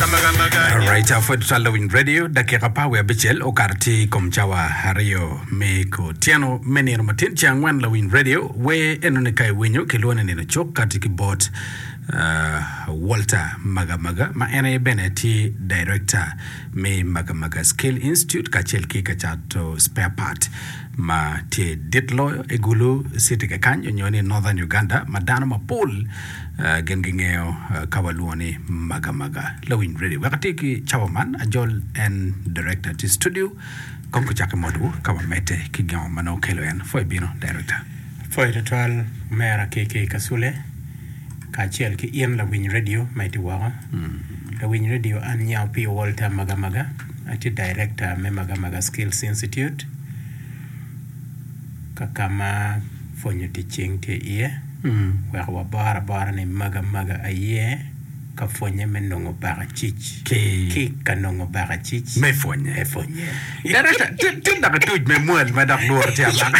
Alright, uh, pwod twal lawiny radio dakika pa wiye abicel okato tye i kom cawa aryo me kutyeno me nino matin ce angwen lawiny radio we enoni ka iwinyo kilwongo ni nino cuk kati ki bot uh, Walter Magamaga ma en aye bene tye director me Magamaga Skill Institute kacel ki ka cato spare part ma tye dit loyo i Gulu City kekany onyo ni Northern Uganda ma dano mapol Gin gingeyo ka walwongo ni maga maga. Lawiny Ready. Wek atir ki cawa man, ajol en Director tye studio. Kong kucak ki mot-wu ka wamedde ki gin ma nongo kelo en. Pwoyo bino, Director. Pwoyo twatwal omera KK Kasule kacel ki in Lawiny Radio ma itye woko. Lawiny Radio, an Nyao P. Walter Maga Maga, atye Director me Maga Maga Skills Institute. ka ka ma pwonyo tic cing tye iye wek wabor abora ni maga maga aye ka pwonye me nongo baka cic ki ka nongo baka cic me pwonye me pwonye daracca tye dok atuc me mwal ma dok lworo tye amaka.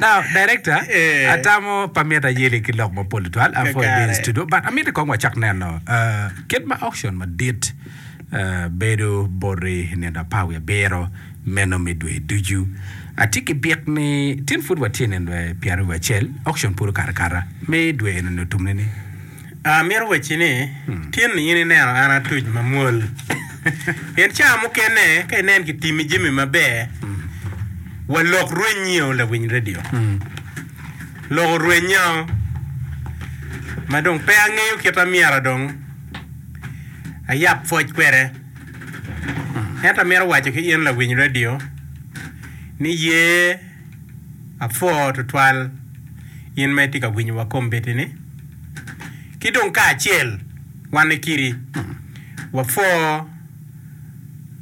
Now, Director, Eh. atamo pa mit ayeli ki lok mapol tutwal uh, for Kakare. being studio, but amiti kong wacak neno uh, kit ma auction madit uh, bedo boti nino apar wiye abiro meno me dwe ducu. Atye ki byek ni tin pud watye nino dwe pyeraryo wiye acel, auction pud okato akata me dwe eno ni otumne ni. Amito wacci ni, tin-ni in ineno an atuc mamwol. Pien ca mukene ka inen kitimi jami maber, walok rwennyio lawiny redio. Loko rwennya ma dong pe angeyo kit ma myero dong ayab pwoc kwede. Ento amito waco ki in lawiny redio ni ye apwo tutwal in ma itye ka winyowa kombeddi-ni. ki dong kacel wan kiri wapwo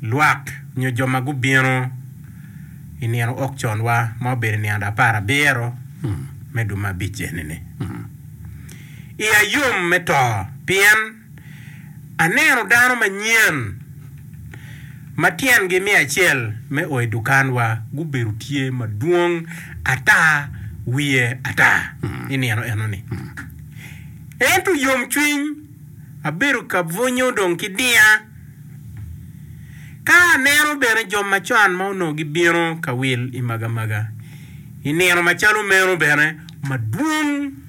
lwak nyo jo ma gubino i nino ok conwa ma obedo i nino ada apar abiro me duma abic eni-ni. Iya yom me to pien. Aneno dano manyen ma tyengi me acel me o i dukanwa gubedo tye madwong ata wiye ata i nino enoni. Ento yomcwiny abedo ka bwunyo dong ki diya ka aneno bene jo macon ma onongo gibino ka wil i magamaga i nino macalo meno bene madwong.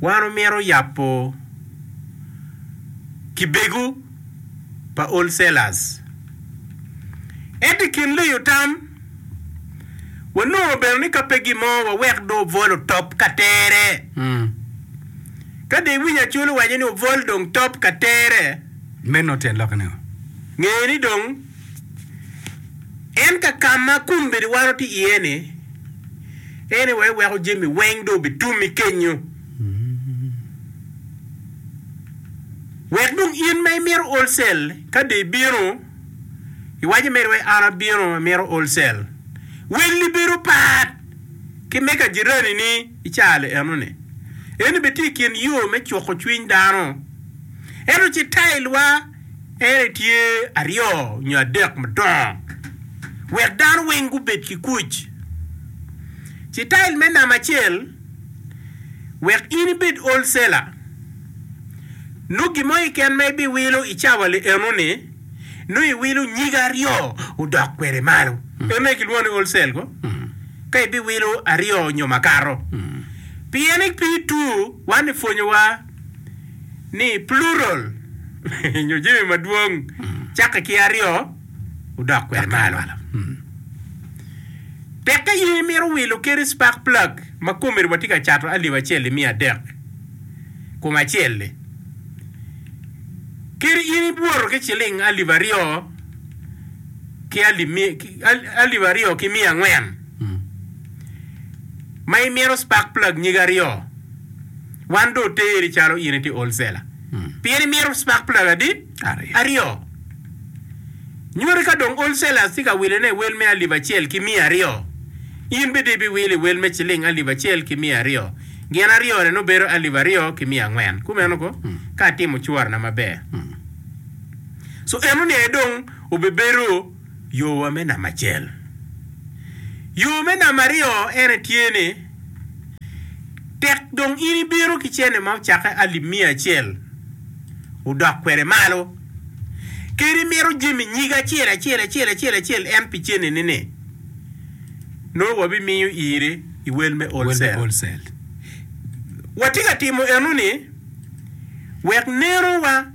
Wan omito yabo kibegu pa wholesalers. Ento i kin liyo tam, wanongo bene ni ka pe gimo wawek dong obwol otop ka tere. Ka dong iwinyo Acol owaco ni obwol dong top ka tere, meno tyen lokke nigo? Nge ni dong. En ka ka ma kombeddi wano tye iye ni, en aye wee weko jami weng dong obitumi kenyo. Wek dong in ma imito wholesale ka dong ibino iwaco mere wai an abino amito wholesale, welli bedo pat ki me ka jirani ni i caro eno ni. Eni bene tye i kin yo me cuko cwiny dano. Ento ci tail wa. Ere tye aryo nyo adek madongo wek dano weng gubed ki kuc. Citail me namba acel, wek in ibed wholesaler, nongo gin mo keken ma ibiwilo i cawa li eno-ni, nongo iwilo nyige aryo odok kwede malo. Eno aye kilwongo ni wholesale ko, ka ibiwilo aryo nyo makato. Pien pi tur, wan epwonyowa. ni plural nyo jami madwong cakke ki aryo odok kwede malo. Tekke ye imito wilo keri spark plug ma komeri watye ka cato alip acel i miya adek kom acel-li kadi in ibwoto ki ciling alip aryo ki alip aryo ki miya angwen ma imito spark plug nyige aryo. Wan dong oteri calo in itye olcela. Pien imito spark plug adi? Aryo. Nyuti ka dong olcela tye ka wilone i wel me alip acel ki miya aryo, in bene ibiwilo i wel me ciling alip acel ki miya aryo. Gin aryone nongo bedo alip aryo ki miya angwen. Kumeno ko, ka atimo cuwarana maber. So enoni aye dong obibedo. Yo wa me namba acel. Yo me namba aryo ene tye ni, tek dong in ibino ki cene ma ocakke alip miya acel odok kwede malo, kadi imito jami nyige acel acel acel acel acel en pi cene ni ni, nongo wa bi miyo iri i wel me wholesale. Wa tye ka timo eno ni wek neno wa.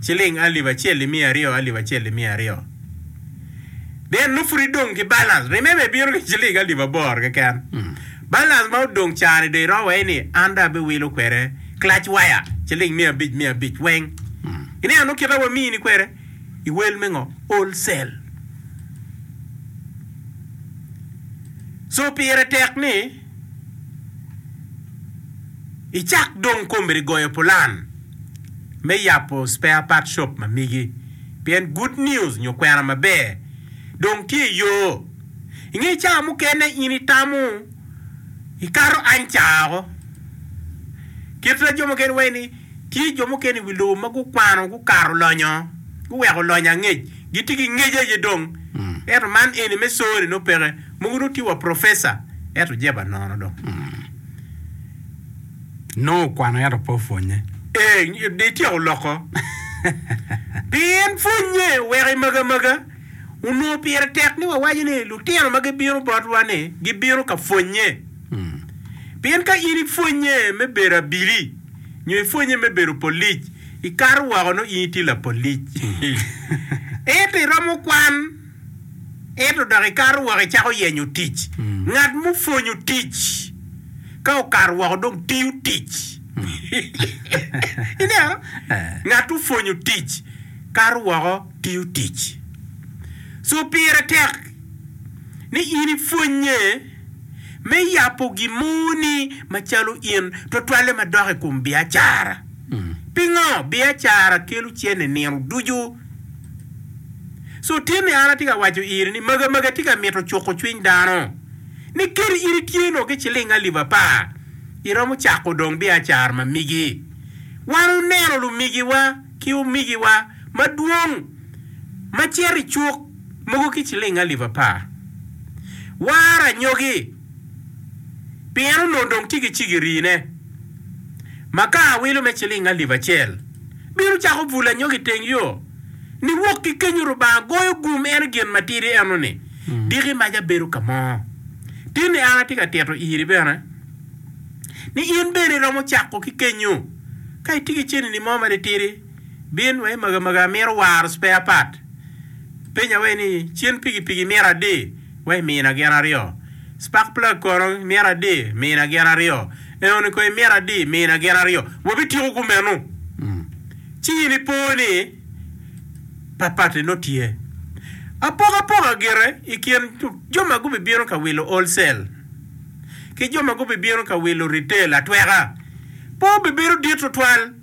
ciling alip acel i miya aryo, alip acel i miya aryo. Then nongo pud idong ki balance. Remember ibino ki ciling alip aboro keken. Mm. Balance ma odong cani do iro wai ni an do abiwilo kwede clutch wire ciling miya abic miya abic weng. Mm. Ineno nongo kita wamiyi ni kwede iwel me ngo wholesale. So pire tek ni I cak dong kombedi goyo pulan me yabo spare part shop ma migi pien Good News nyo kwena maber dong tye i yo. I nge cawa mukene in itamo ikato Ancago. Kit ma jo mukene waci ni tye jo mukene i wi lobo ma gukwano gukato lonyo, guweko lonyo angec, gitye ki ngec aye dong. Ento man eni me soo-ni nongo peke. Mogo dong tye wa professor ento jeba nono dong nongo okwano ento pe opwonye. Eeh de ityeko loko pien pwonye weko i maga maga onongo pire tek ni wawaco ni lutino ma gibino botwa ni gibino ka pwonye pien ka in ipwonye me bedo abili nyo ipwonye me bedo polic ikato woko nongo in itye lapolic ento iromo kwan Ento dok ikato woko icako yenyo tic. Ngat mupwonyo tic ka okato woko dong tiyo tic. Ineno? Ngat opwonyo tic kato woko tiyo tic. So pire tek ni in ipwonye me yabo gin mo ni macalo in twatwalle madok i kom biacara. Pingo? Biacara kelo cene nino ducu. Cuttinni an atye ka waco iri ni magi magi tye ka mito cuko cwiny dano ni kadi in itye nongo ki ciling alip apar iromo cako dong biacara ma migi. Wan wuneno lumigiwa ki omigiwa madwong ma cito i cuk mogo ki ciling alip apar. War anyogi pien onongo dong tye ki cigirine. ma ka awilo me ciling alip acel, bino cako bul anyogi iteng yo, niwok ki kenyo Rubanga goyo gum eno gin matidi eno ni, diki mac abedo ka mo. Tinni an atye ka tito iri bene, ni in bene iromo cako ki kenyo, ka itye ki cenini mo ma titidi, bin wa i maga maga amito waro spare part, penya wa i ni, cen pigi pigi imito adi? wa i mina gin aryo. Spark plug kono imyero adi mina gin aryo. Eoni kono imyero adi mina gin aryo. Wabityeko kumeno. Ci in ipo ni patpat-ti nongo tye. Apokapoka gire i kin jo ma gubibino ka wilo wholesale ki jo ma gubibino ka wilo retail atweka pe obibedo dit tutwal.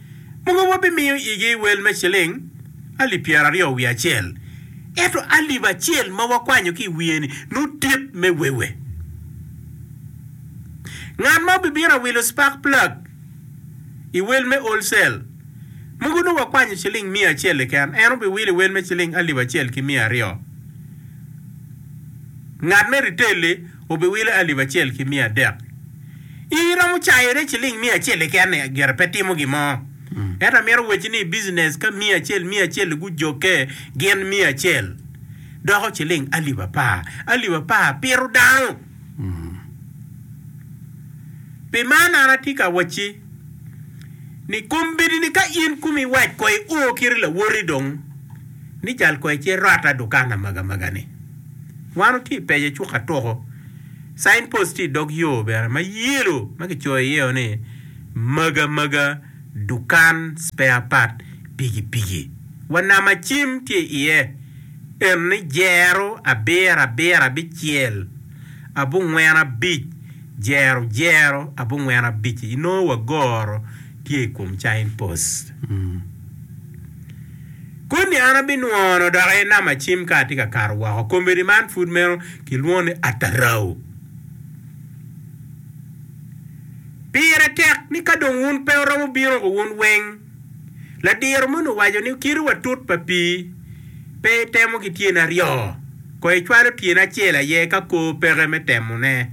Mogo wa bimiyo igi wel me ciling alip pyera aryo wiye acel, ento alip acel ma wakwanyo ki i wiye ni nongo dit me wewe. Ngat ma obibino awilo spark plug i wel me wholesale, mogo nongo wakwanyo ciling miya acel keken, en obiwilo i wel me ciling alip acel ki miya aryo. Ngat me retail-li obiwilo alip acel ki miya adek. In iromo cayone ciling miya acel keken ni gire pe timo gin mo. Ento amito wacci ni i business ka miya acel miya acel-li gujokke gin miya acel doko ciling alip apar. Alip apar pito dano. Pi man an atye ka wacci. ni kombeddi ni ka in kumi iwac ko i o kiri lawoti dong ni cal ko ice rot a dukan amaga maga ni wan otye i pece cuk atoko sign post tye i dog yo bene ma yellow ma kicoyo iye o ni maga maga dukan spare part piki piki wa nama cim tye iye en ni jero abiro abiro abicel abungwen abic jero jero abongwen abic-ci inongo wa goro tye i kom China Post. Koni an abinwono dok i Nam Acim ka atye ka kato woko. Komiti man pud meno kilwongo ni Atarau. Pire tek ni ka dong wun pe wuromo bino ko wun weng. Ladiro moni owaco ni kite wa tut pa pii pe itemo ki tyeni aryo. Koyo icwalo tyene acel aye ka kor peke me temone.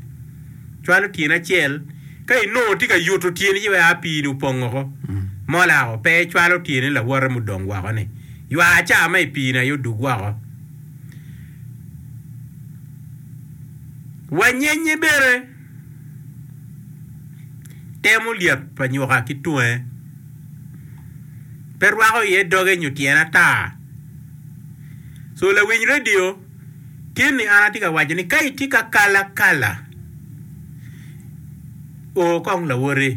Cwalo tyene acel ka inongo itye ka yuto tyeni ci wek a pii-ni opong woko. Molako pe icwalo tyeni lawote mudong woko-ni. Ywa ca ma i pii-ni aye odug woko. Wanyenye bene temo lyet pa nyuka ki tunge. Pe rwako iye doge nyo tyene ata. So lawiny radio tin ni an atye ka waco ni ka itye ka kala kala o kong lawoti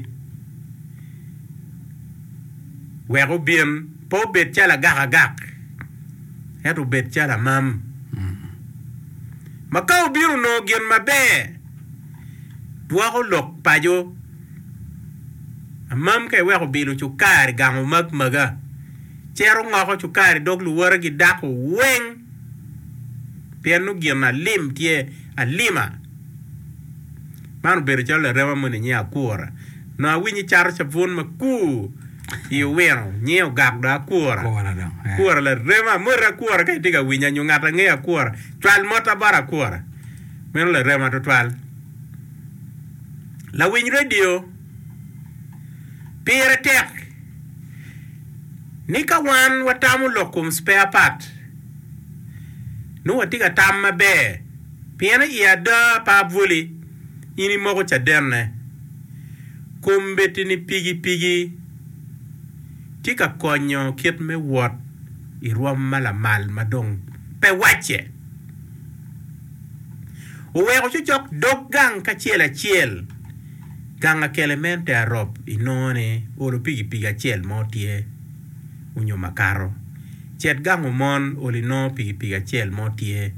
wek obin pe obed calo agak agak ento obed calo amam ma ka obino onongo gin maber dwoko lok paco amam ka iweko bilo cukar gango map maga. cito ngoko cukari dog luwotegi dako weng pien nongo gin alim tye alima. Man obedo calo larema moni nyinge Akura. Nongo awinyo cato cabun makur i owino nyinge ogak dong Akura. Akura larema. Moti Akura ka itye ka winya nyo ngat angeyo Akura, cwal mota bot Akura. Meno larema tutwal. Lawiny redio. Pire tek ni ka wan watamo lok kom spare part, nongo watye ka tam maber pien i ada pa abwoli in imoko cadenne. Kombeddi-ni pigipigi tye ka konyo kit me wot i rwom ma lamal ma dong pe wacce. Oweko cocok dog gang kacel acel. Gang akelemente arop inongo ni olo pikipiki acel mo tye onyo makato. Cet gang omon olo inongo pikipiki acel mo tye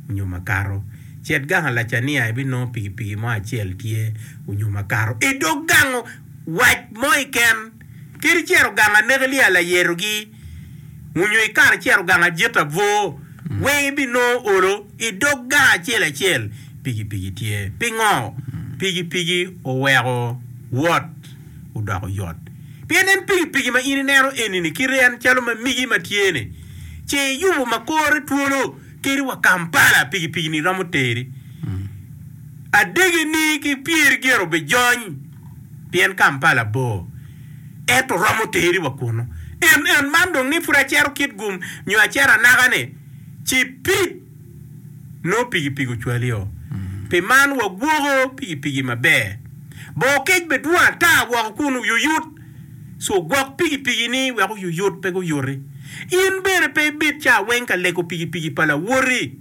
onyo makato. Cet gang alacania ibinongo pikipiki mo acel tye onyo makato. Idog gang wac mo iken kadi cito gang aneke lye alayero gi. Onyo i kare cito gang ajit abwor, weng ibinongo olo i dog gang acel acel. Pigi pigi tye. Pingo? Pigi pigi oweko wot odoko yot. Pien en pigi pigi ma in ineno eni-ni kite en calo ma migi ma tye-ni, ce iyubo ma kore twolo teri wa Kampala, pigi pigi-ni romo teri adege-ni ki pyeri gin obijony. pien Kampala bor, ento romo teri wa kunu. En, en man dong ni pud acero Kitgum nyo acero anaka-ni, ci pi! nongo pikipiki ocwali o. Pi man wagwoko pikipiki maber. Bor kec bed dwong ata woko kun oyuyut, ci ogwok pikipiki-ni wek oyuyut pe guyuti. In bene pe ibed ca weng ka lego pikipiki pa lawoti.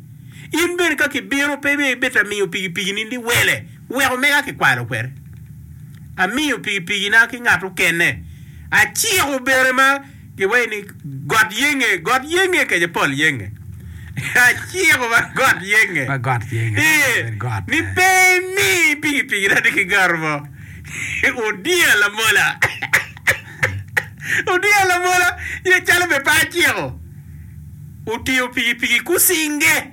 In bene ka kibino pe ibeta miyo pikipiki-ni liwele. Wek omega kikwalo kwede, amiyo pikipikina ki ngat okene, aciko bene ma kiwaco ni got yenge, got yenge kece pol yenge, aciko ma got yenge, Ma got yenge, ee, dok obedo got. ni pe imi pikipikina ni kigaro mo. Odiya lamola, odiya lamola, ye calo me pe aciko, otingo pikipiki kucinge.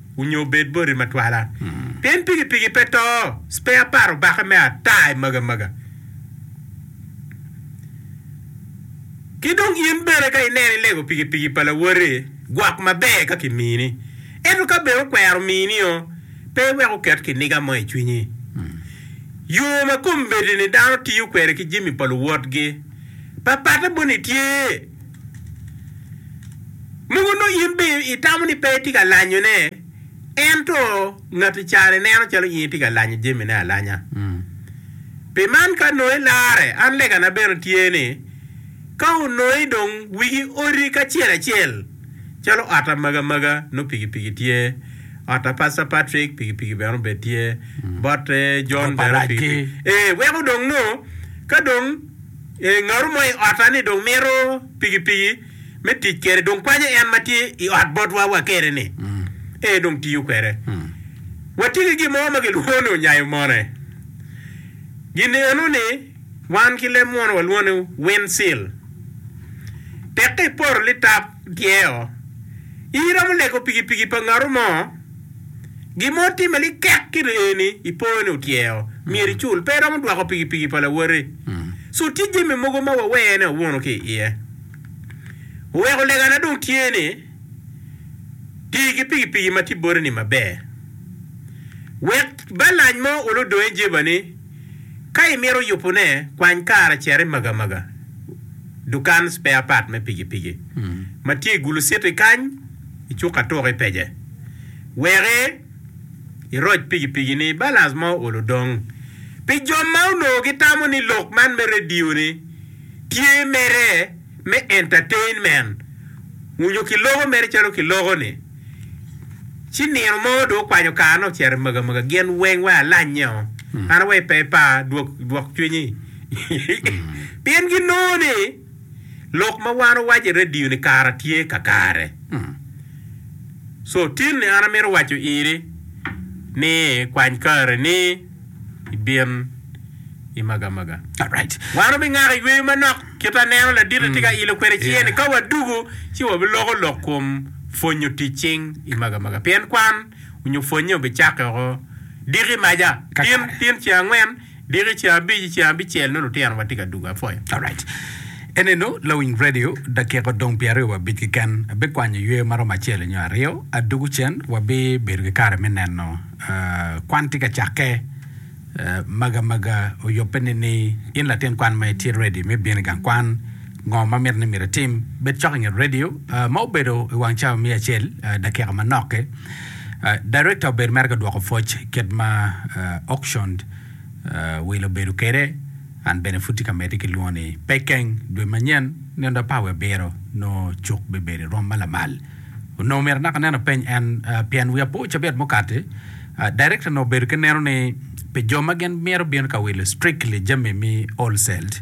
onyo obed boti matwala. Pien pikipiki pe to, spare part obake me ata i maga maga. Ki dong in bene ka ineno ilego pikipiki pa lawoti, gwok maber ka ki mini. Ento ka bene okwero mini o, pe iwek oket kiniga mo i cwinyi. Yo ma kombeddi-ni dano tiyo kwede ki jami pa luwotgi, pa patte boni tye. Mogo nongo in bene itamo ni pe itye ka lanyone, ento ngati cani neno calo in itye ka lanyo jamine alanya. Pi man ka nongo ilarre, an legana bene tye ni, ka onongo i dong wigi oti kacel acel, calo ot amaga maga nongo pikipiki tye, ot a Pastor Patrick pikipiki bene obed tye, bot John bene pikipiki, ee weko dong nongo ka dong. Ee, ngato mo i otta-ni dong mito pikipiki me tic kwede, dong kwanyo en ma tye i ot botwa wakere-ni. Ee, dong tiyo kwede. Watye ki gin mo ma kilwongo ni onyayo mone. Gin eno-ni wan ki leb munu walwongo ni windsill. Tek ka iporo litap tye-o, iromo lego pikipiki pa ngato mo. Gin ma otimme ni kek kit aye ni ipoyo ni otyeo, myero icul. Pe iromo dwoko pikipiki pa lawoti. Cu tye jami mogo ma wawee ni wawuno ki iye. Weko legana dong tye ni, ti ki pikipiki ma tye boti-ni maber. Wek balac mo olo dongi jeba ni ka imito yubone, kwany kare cit i magamaga, dukan spare part me pikipiki, ma tye i gulu city kany. icuk atuk ipece. Wek iroc pikipiki ni balans ma ool odong. Pi jo ma onongo gitamo ni lok man me radio ni tye mere me entertainment, onyo kiloko mere calo kiloko ni, ci nino mo dong okwanyo kar ne ocito i maga maga gin weng wai alanye o. An awaci pe ipar, dwok cwinyi. Pien ginongo ni. Lok ma wan owaco i redio ni kara tye kakare. So tin ni an amito waco iri ni kwany kare ni ibin i magamaga. Alright. Wan wabingako yweyo manok kit aneno laditi tye ka ilo kwede ciye ni ka wadugo ci wabiloko lok kom pwonyo tic cing i magamaga pien kwan onyo pwonye obicakke oko diki maja tin tin ceng angwen. Diki ceng abic i ceng abicel nongo lutino watye ka dugo apwoyo. Alright. Enenu lawiny radio, dakika odong pye aryo wa abic keken. Abikwanyo yweyo maromo acel nyo aryo, adugu cen wabi bedo ki kare me neno kwan tye ka cakke. Maga maga oyobbe ni ni in latin kwan ma itye ready me bino i gang kwan. Ngo ma miti ni myero itim? Bed cok i nget redio ma obedo i wang cawa me acel dakika manoki. Director obedo mere ka dwoko pwoc kit ma auctioned will obedo kwede. An bene pud tye ka medde ki lwongo ni Pekeng. Dwe manyen nino dong par wiye abiro nongo cuk bibedo i rwom ma lamal. Onongo myero naka nen openy en pien wiya pe ocabit mukati. Director onongo obedo ki neno ni pi jo ma gin myero bino ka wilo strictly jami me wholesale.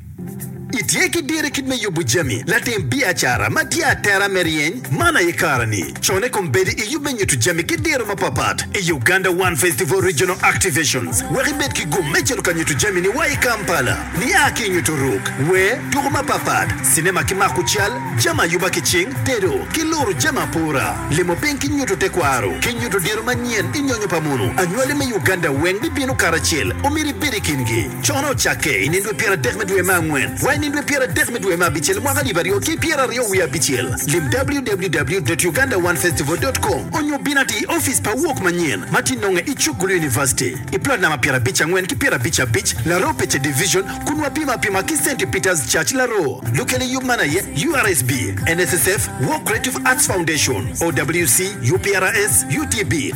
Itye ki diro kit me yubo jami latim biacara ma tye atera me ryeny man aye kare-ni. Con i kom bedo i yub me nyuto jami ki diro mapapat i Uganda One Festival Regional Activations wek ibed ki gum me cito ka nyuto jamini wa i Kampala. Nia ki i nyuto ruk, wer, tuku mapapat, cinema ki mako cal, jami ayuba ki cing, tedo, ki luro jami apura, limo piny ki nyuto tekwaro, ki nyuto diro manyen i nyonyo pa mono, anywali me Uganda weng bibino karacel, omyero ibed i kingi. Conne ocakke i nindwe pyer adek me dwe me angwen wa i nindwe pyer adek me dwe me abicel mwaka alip aryo ki pyer aryo wiye abicel. Lim www.ugandaonefestival.com onyo bin ati i ofice pa Awok Manyen ma ti nonge i Chukgulu University i plot namba pyer abic angwen ki pyer abic abic Laroo Pece Division kun wapimo apima ki Saint Peter's Church Laroo. Lukele yub man aye URSB, NSSF, War Creative Arts Foundation, OWC, UPRS, UTB,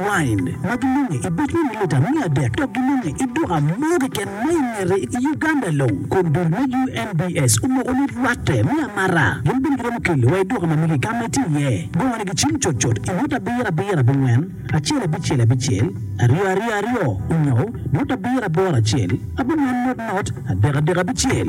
Wine, ma gilunge i boc me mililita miya adek dok gilunge i duka mo keken ma i ngete i Uganda long. Kun dul me UNBS omoko ni rwatte me amata gin bene giromo kelo wa i duka mamegi ka ma itye iye. Gongo ni gicim cut cut i ngut abiro abiro abongwen, acel abicel abicel, aryo aryo aryo, onyo ngut abiro aboro acel, abongwen not not, adek adek abicel.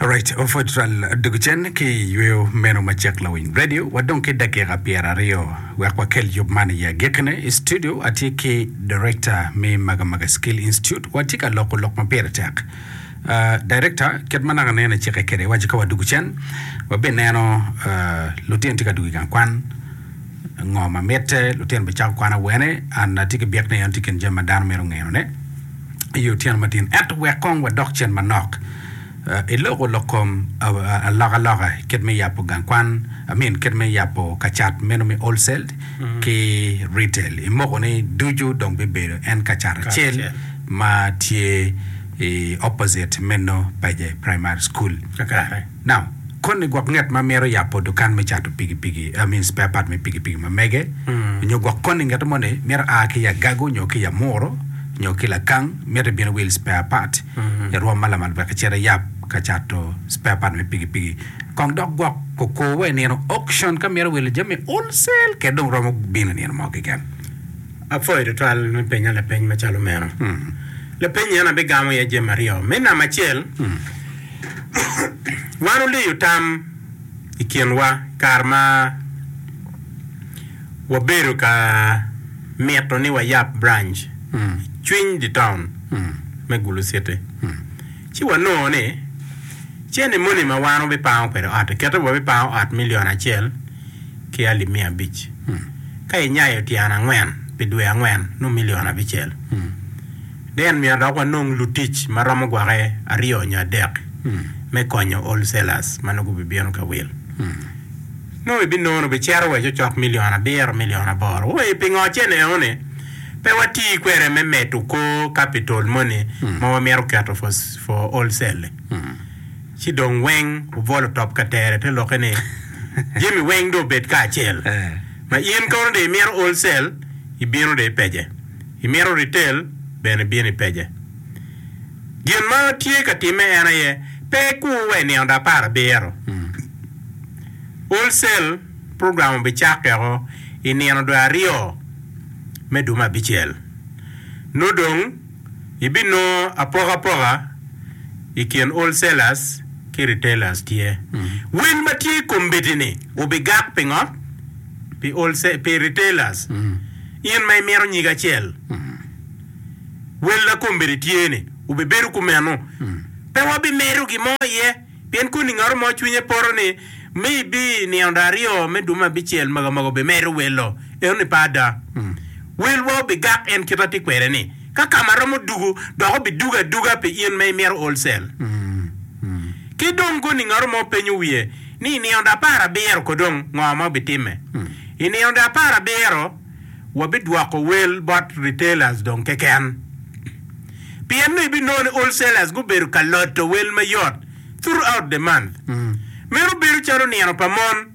Alright, ofot twal dog cen ki yweyo meno ma cek lawiny radio wadong ki dakika pyera aryo wek wakel yub man i agikine i studio atye ki director me magamaga skill institute watye ka loko lok ma pire tek Uh, director kit ma naka nene cike kede waco ka wadugu cen wabe neno uh, lutino tye ka dugu i gang kwan ngo ma mitte lutino bicako kwan awene an atye ki byek ni en tye kin jami ma dano mito ngenone i otyeno matin. Ento wek kong wadok cen manok i loko lok kom alokaloka kit me yabo gang kwan, I mean kit me yabo kacat meno me wholesale ki retail. I moko ni ducu dong bibedo en kacat acel ma tye i opposite meno Paje Primary School. Nam, Koni gwok nget ma mito yabo dukan me cato pikipiki, I mean spare part me pikipiki ma mege, nyo gwok koni ngeto moni mito a ki i agago nyo ki i amuro nyo ki lakang, mito ibino wil spare part i rwom ma lamal wek icit iyab ka cato spare part me pikipiki. Kong dok gwok koko wa i nino auction ka mito wilo jami wholesale kede dong romo bino i nino mo keken. Apwoyo tutwal me penya lapeny macalo meno. Lapeny eni abigamo iye jami aryo. Me namba acel, Wan wuliyo tam i kinwa i kare ma wabedo ka mito ni wayab branc i cwiny dye taun me Gulu Citi, ci wanongo ni cente moni ma wan wubipango kwede ot-ti kite wabipango ot milion acel ki alip miya abic, ka inyayo tyen angwen pi dwe angwen nongo milion abicel. Deen myero dok wanong lutic ma romo gwake aryo nyo adek me konyo wholesalers ma nongo gubibino ka wil. Nongo ibinono bicero wa i cocok milion abiro, milion aboro. Ooii, pingo cen eoni pe watii kwede me medo kor capital moni ma wamito keto for, for wholesale? Ci dong weng obwolo top ka tere te lokke ni, Jami weng dong obed kacel. Ma in kono dong imito wholesale, ibino dong ipece. Imito ritel? Bene bin ipece. Gin ma tye ka timme en aye, Pe ikur wa i nino da apar abiro. Wholesale program obicakkeko i nino dwe aryo me dwe me abicel. Nongo dong ibinongo apokapoka i kin wholesalers ki retailers tye. Wil ma tye i kombitini obigak pingo? pi retailers, in ma imito nyig acel, wel na kombeddi tye-ni, wubibedo kumeno. Pe wabimedo gin mo iye, pien koni ngat mo cwinye poto ni, 'Maybe nino dong aryo me dwe me abicel mega mogo obimedo welo enoni pe ada. Welwa obigak en kit ma atye kwede-ni. Ka kama romo dugo, dok obidugo aduga pi in ma imito wholesale. Ki dong goningaro ma wupenyo wiye ni i nino apar abiro kodong ngo ma wubitimme? I nino apar abiro wabidwoko wel bot retailers dong keken. Pien nongo ibinongo ni wholesalers gubedo ka loto wel mayot throughout the month. Meno bedo calo nino pa mon.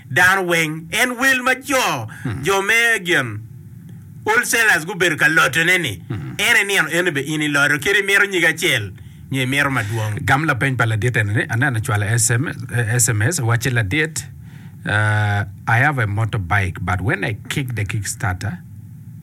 Dano weng en wel ma co jo me gin wholesalers gubedo ka lotone ni en inino eno be in iloto kit imito nyig acel nyo imito madwong. Gam lapeny pa ladit eni ni, Aneno acwalo sms wacci ladit, I have a motorbike but when I kick the kickstarter,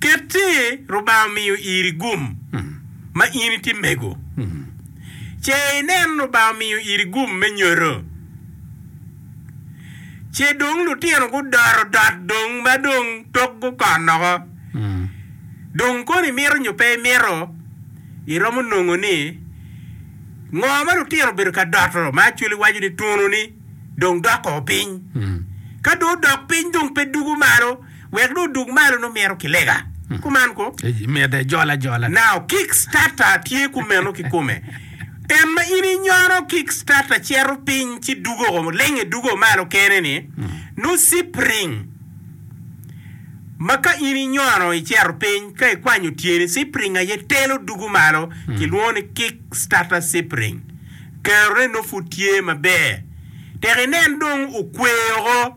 Ket ci Rubanga omiyo iri gum ma in itye mego, ce inen Rubanga omiyo iri gum me nyoto. Ce dong lutino gudoro dot dong ma dong tok gukon noko. Dong kono imito nyo pe imito, iromo nongo ni ngo ma lutino obedo ka doto ma Acholi waco ni tunu ni dong doko piny. Ka dong odok piny dong pe dugo malo. Wek dong odug malo nongo mito ki lega. Kuman ko. Mede ajol ajola. Now kick starter tye kumeno kikome. En ma in inyono kick starter cito piny ci dugo o lenge dugo malo kene ni nongo cipring ma ka in inyono icito piny ka ikwanyo tyeni cipring aye telo dugo malo kilwongo ni kick starter cipring. Kero ne nongo pud tye maber. Tek inen dong okwer o ko.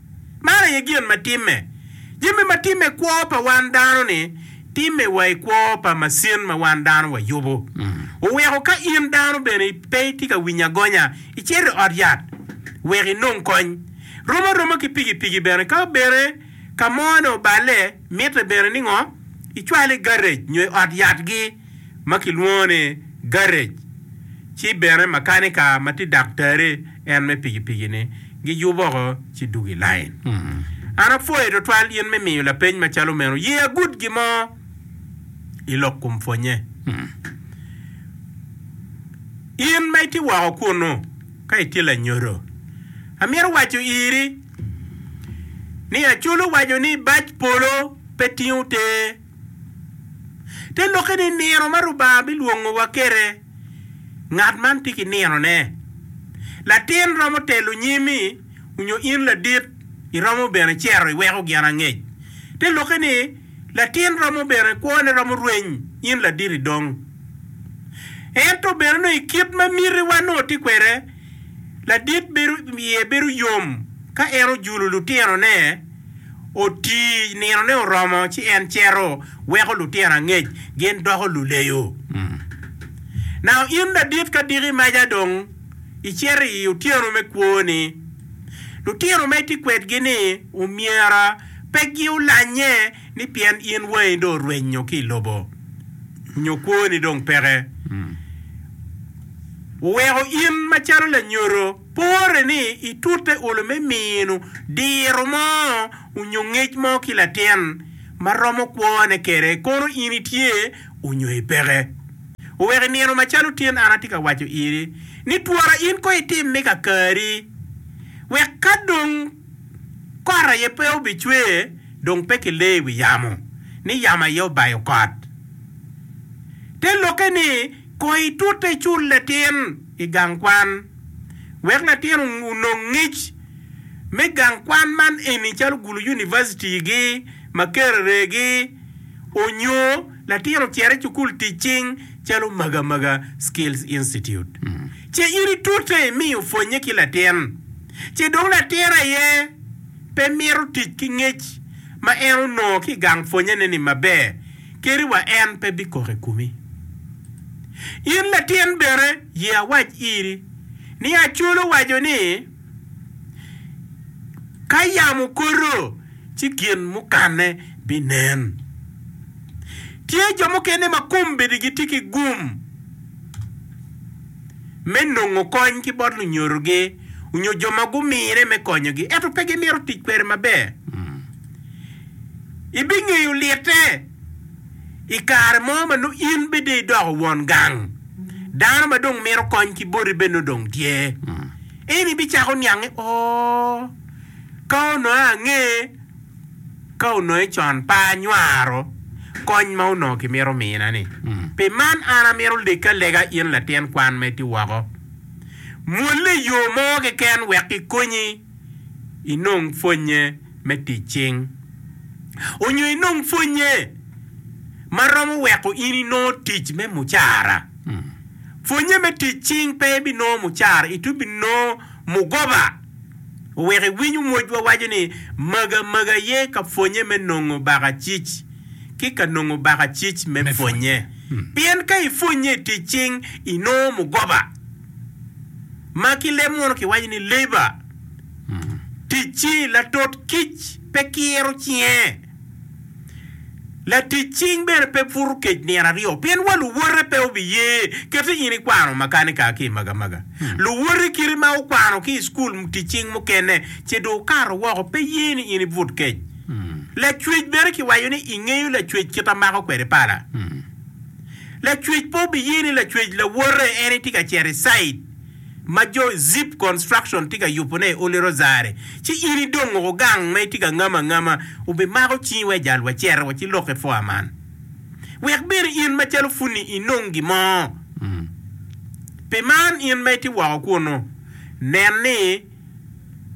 Man aye gin ma timme. Jami ma timme kwo pa wan dano-ni, timme wa i kwo pa macin ma wan dano wayubo. Oweko ka in dano bene pe itye ka winyo agonya, icito i ot yat wek inong kony. Rom aroma ki pikipiki bene, ka bene ka mo-ni oballe, mitte bene ni ngo? Icwale i garec nyo i ot yatgi. ma kilwongo ni garrej, ci bene makanika ma tye daktari en me pikipiki-ni giyub woko ci dwogo i lain. An apwoyo twatwal in me miyo lapeny macalo meno. Ye agud gin mo i lok kom pwonnye. In ma itye woko kunnu, ka itye lanyodo, amito waco iri ni Acolu owaco ni bac polo pe tingo ter. Te lokke ni nino ma Rubanga bilwongowa kede, ngat man tye ki ninone. Latin romo telo nyimi, onyo in ladit iromo bene cero iweko gin angec. Te lokke ni latin romo bene kwone romo rweny in ladit idong. Ento bene nongo i kit ma mitiwa nongo tye kwede, ladit bedo iye bedo yom ka en ojulo lutinone, oti, ninone oromo ci en cito, weko lutino angec gin doko luleyo. Nano in ladit ka diki maca dong icito i otyeno me kwoni, lutino ma itye kwedgi-ni omyera pe giulanye ni pien in wangi dong orwenyo ki i lobo nyo kwoni dong peke, oweko in macalo lanyodo. Pore ni itute olo me mino diro mo onyo ngec mo ki latin ma romo kwone kede kono in itye onyo ipeke. Oweko inino macalo tin an atye ka waco iri ni twara in ko itim me kakari wek ka dong kot aye pe obicwe dong pe kilee iwi yamo ni yamo aye obayo kot. Te lokke ni. Kono itute cul latin i gang kwan wek latin onong ngec me gang kwan man eni calo gulu univacitigi ma kereregi onyo latin ocito i cukul tic cing calo Maga Maga Skills Institute ce in itute imiyo pwonye ki latin ce dong latin aye pe mito tic ki ngec ma en onongo ki i gang pwonyene-ni maber. kadi wa en pe bikok i komi. In latin bene, ye awac iri ni Acol owaco ni, 'Ka yamo okoto, ci gin mukanne binen. Tye jo mukene ma kombedigi tye ki gum me nongo kony ki bot lunyodogi onyo jo ma gumine me konyogi, ento pe gimito tic kwede maber. Ibingeyo lite i kare mo ma nongo in bene dong idoko won gang, dano ma dong mito kony ki boti bene nongo dong tye. Ento ibicako niang ni, 'Oo, ka onongo ange, ka onongo i con pe anywaro kony ma onongo kimito mina-ni. Pi man an amito leggi alega in latin kwan ma itye woko, mwolle i yo mo keken wek kikonyi inong pwonnye. me tic cing. Onyo inong pwonye ma romo weko in inongo tic me mucara. Pwonye me tic cing pe ibinongo mucara, itwero bene nongo mugoba. Owek iwiny omwocwa waco ni, Maga maga aye ka pwonye me nongo baka cic, ki ka nongo baka cic me pwonye. Pien ka ipwonye i tic cing, inongo mugoba, ma ki leb munu kiwaco ni labor. Ticci, Latot kic pe kiro cinge. Latic cing bene pe puto kec nino aryo, pien wa luwote pe obiye kete in ikwano makanika ki i magamaga. Luwoti kiti ma wukwano ki i cukul tic cing mukene ci dong wukato woko pe ye ni in ibut kec. Lacwec bene kiwaco ni ingeyo lacwec kit a mako kwede pala. Lacwec pe obiye ni lacwec lawote en itye ka cito i cait. ma jo Zip Construction tye ka yubone i Oly Rozari, ci in idong woko gang ma itye ka ngamo angama, wubimako cingi wa i jal wa cere wa ci lok i foa man, wek bene in macalo pud-ni inong gin mo. Pi man in ma itye woko kunnu, nen ni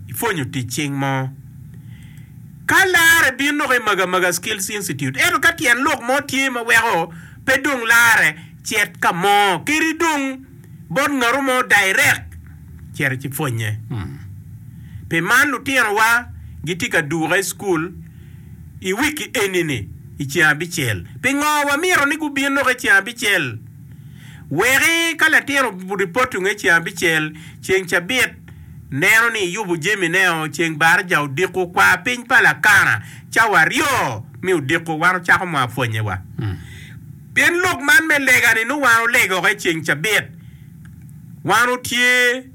ipwonyo tic cing mo. Ka larre bin doko i Magamaga Skills Institute, ento ka tyen lok mo tye ma weko pe dong larre, cet ka mo kadi dong. bot ngat mo dairek, cit ci pwonnye. Pi man lutinowa gitye ka duka i cukul i wiki eni-ni i ceng abicel. Pingo wamito ni gubin lok i ceng abicel? Wek ka latin oripotungo i ceng abicel, ceng cabit neno ni iyubo jamineo, ceng barija odiko kwa piny pa Lakana cawa aryo mi odiko, wan ocako mwapwonnyewa. Pien lok man me lega-ni nongo wan olegoke i ceng cabit, wan otye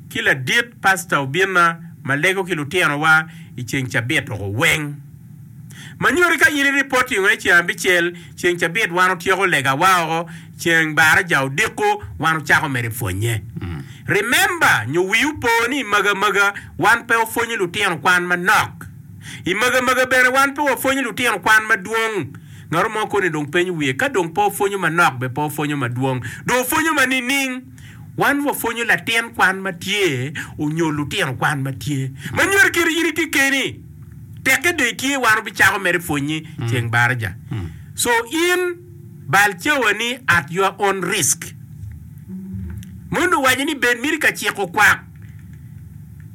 ki ladit pasta obinna ma lego ki lutinowa i ceng cabit oko weng. Ma nyoti ka in iripoti ngo i ceng abicel, ceng cabit wan otyeko legawa oko, ceng baraja odiko wan ocako mere pwonye. Remember nyo wiu po ni i maga maga wan pe wapwonyo lutino kwan manok. I maga maga bene wan pe wapwonyo lutino kwan madwong. Ngat mo koni dong penyo wiye, ka dong pe opwonyo manok be pe opwonyo madwong dong opwonyo ma nining? Wan wapwonyo latin kwan ma tye onyo lutino kwan ma tye. Ma nyuto kit in itye keni, tekke dong itye wan wabicako mere pwonyi ceng baraja. So in bal cawa ni at your own risk. Mon owaco ni bed miti ka ciko kwak.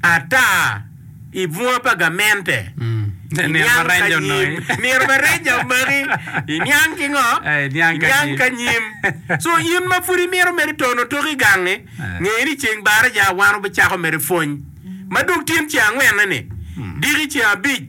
Ata i bunga pa gamente, i niang ka nyim. Nino ma reja omaki, i niang ki ngo? I niang ka nyim. So in ma pud imito mere tono otok i gangi, nge ni ceng baraja wan obicako mere pwony ma dok tyen ceng angwenne ni, diki ceng abic,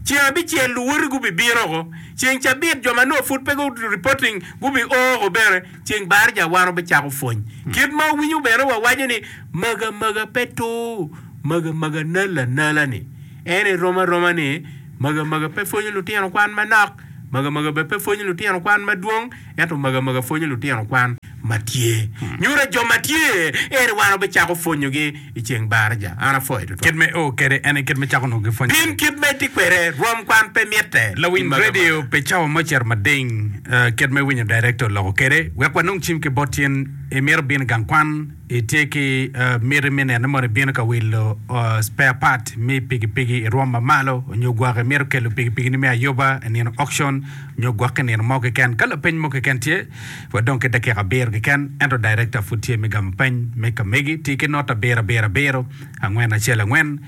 ceng abicel luwoti gubibino oko, ceng cabit jo ma nongo pud pe gu reporting gubi o oko bene. Ceng bar ja waro bicako pwony. Kit ma wawinyo bene wa waco ni maga maga pe tur maga maga nal anala ni en i rom aroma ni maga maga pe pwonyo lutino kwan manok maga maga bene pe pwonyo lutino kwan madwong ento maga maga pwonyo lutino kwan matye nyuto jo matye eri waro bicako pwonyo gi i ceng baraja. An apwoyo tutwal. Kit me o kwede en aye kit me cako nongo ki pwony. Pim kit ma itye kwede. Rwom kwan pe mitte. Lawiny radio pi cawa mo ocito mading. Kit me winyo director oloko kwede wek wanong cim ki bot tyen. Imito bino i gang kwan, itye ki miti me nene mono ibino ka wilo spare part me piki piki i rwom ma malo onyo gwok imito kelo piki piki ni me ayoba i nino auction onyo gwok ki nino mo keken. Ka lapeny mo keken tye. Wadong ki dakika abiro keken, ento dayirekta pud tye me gamo peny me kamegi. Ti ki not abiro abiro abiro, angwen acel angwen,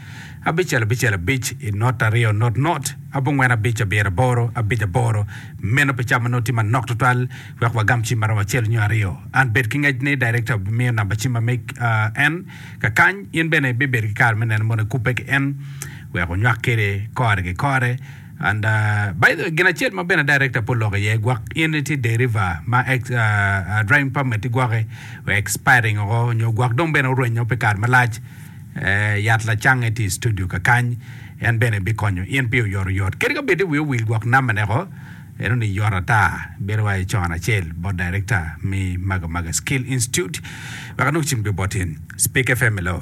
abicel abicel abic, i not aryo not not, abongwen abic abiro aboro, abic aboro. Meno pi camo noti manok tutwal wek wagam cim ma romo acel nyo aryo. An bed ki ngec ni dayirekta obimiyo namba cim ma me en. Ka kany, in bene ibibedo ki kare me neno mono ikubbe ki en wek onywak kwede kore ki kore. And by the way gin acel ma bene director pe oloko iye gwak in itye deriva ma ex uh, driving permit igwaki expiring oko nyo gwak dong bene orwenyo pi kare malac eh, yat lacang iti studio kakany en bene bikonyo in pi oyot oyot kadi ka bedi wi owil gwak number ne ko eno ni yot ata bedo wa icon acel bot director mi maga maga skill institute wek anong cim gwe bot in speak fm hello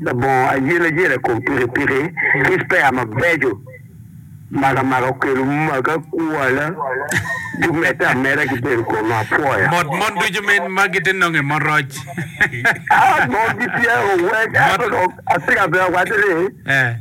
Labongo ayelayela i kom pikipiki ki spare mabeco makamaka okelo maga kwala gumedde ameda ki bedo kome apwoya. Mot mon ducu min ma gitye nongo i mot roc. Aa, mon gitye owek, ento dong atika bene awacce ni.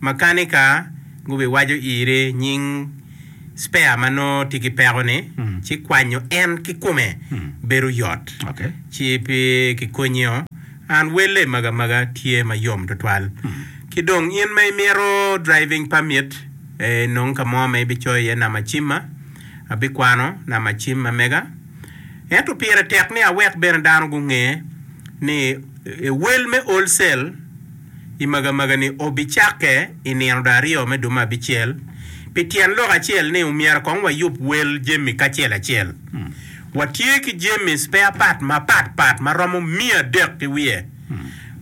Makanika gubiwaco ire nying spare ma nongo tye ki peko-ni, ci kwanyo en kikome bedo yot. Ci pi kikonyi-o, an welle maga maga tye ma yom twatwal. Ki dong in ma imito driving permit, enong ka mo ma ibicoyo iye namacimma, abikwano namacimma mega. Ento pire tek ni awek bene dano gunge ni ewel me wholesale. I magamaga ni obi cakke i nino da aryo me dume abicel, pi tyen lok acel ni omyero kong wa yub wel jami kacel acel. Wa tye ki jami spare part ma pat pat ma romo miya adek ki wiye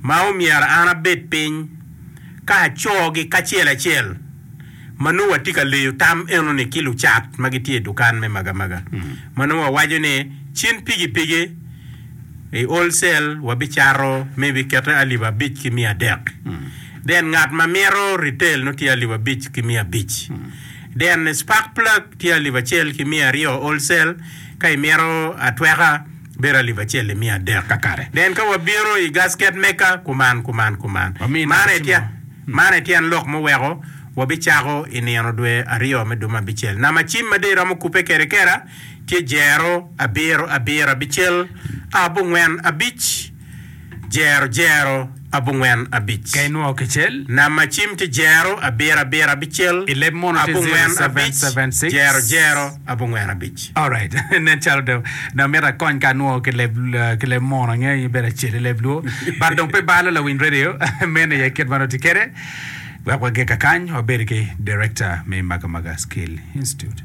ma omyero an abed piny ka aco gi kacel acel. Ma nongo watye ka leyo tam enoni ki lucat ma gitye i dukan me magamaga ma nongo wawaco ni cen pigipigi i wholesale wabicato me ibikete alip abic ki miya adek. Then ngat ma mito retail nongo tye alip abic ki miya abic. Then spark plug tye alip acel ki miya aryo wholesale ka imito atweka. bedo alip acel i miya adek kakare. Pien ka wabino i gasket meka kuman, kuman, kuman, man aye tyen lok muweko wabicako i nino dwe aryo me dwe me abicel. Nam acim ma dee romo kubbe kede kera tye jero abiro, abiro, abicel, abongwen, abic. Jero jero abongwen abic. Ka inwongo kicel. Nam macim ki jero abiro abiro abicel. I leb mono tye 0776. Jero jero abongwen abic. Alright nen calo dong amito akony ka anwongo ki leb ki leb mono angeyo ni bedo acel i leb luo but dong pe balo lawiny radio meno aye kit ma nongo tye kede wek wage kakany wabedi ki director me Maga Maga skill institute.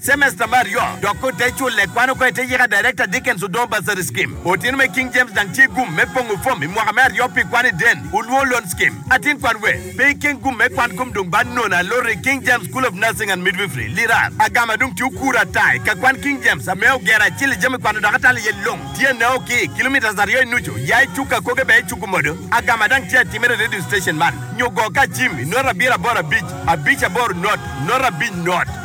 Cemesta me aryo dok pe ote culle, kwano kong ite yika Director Dickens Odoo Bursary Scheme. Otino me King James dang tye gum me pongo fom i mwaka me aryo pi kwan i Den Ulwor Loan Scheme. Atin kwan we pe i ken gum me kwan kom dong ba nono aloro i King James School of Nursing and Midwifery, Lirar. Agam adong tye okura ata i ka kwan King James ame ogero acel i jami kwano dok atalo iye long tye nao ki i kilometres aryo i nucu ya i cuk akoge bene i cuku modo. Agam adang tye atimere i radio station man nyo go ka Jim i note abiro aboro abic abic aboro note note abic note.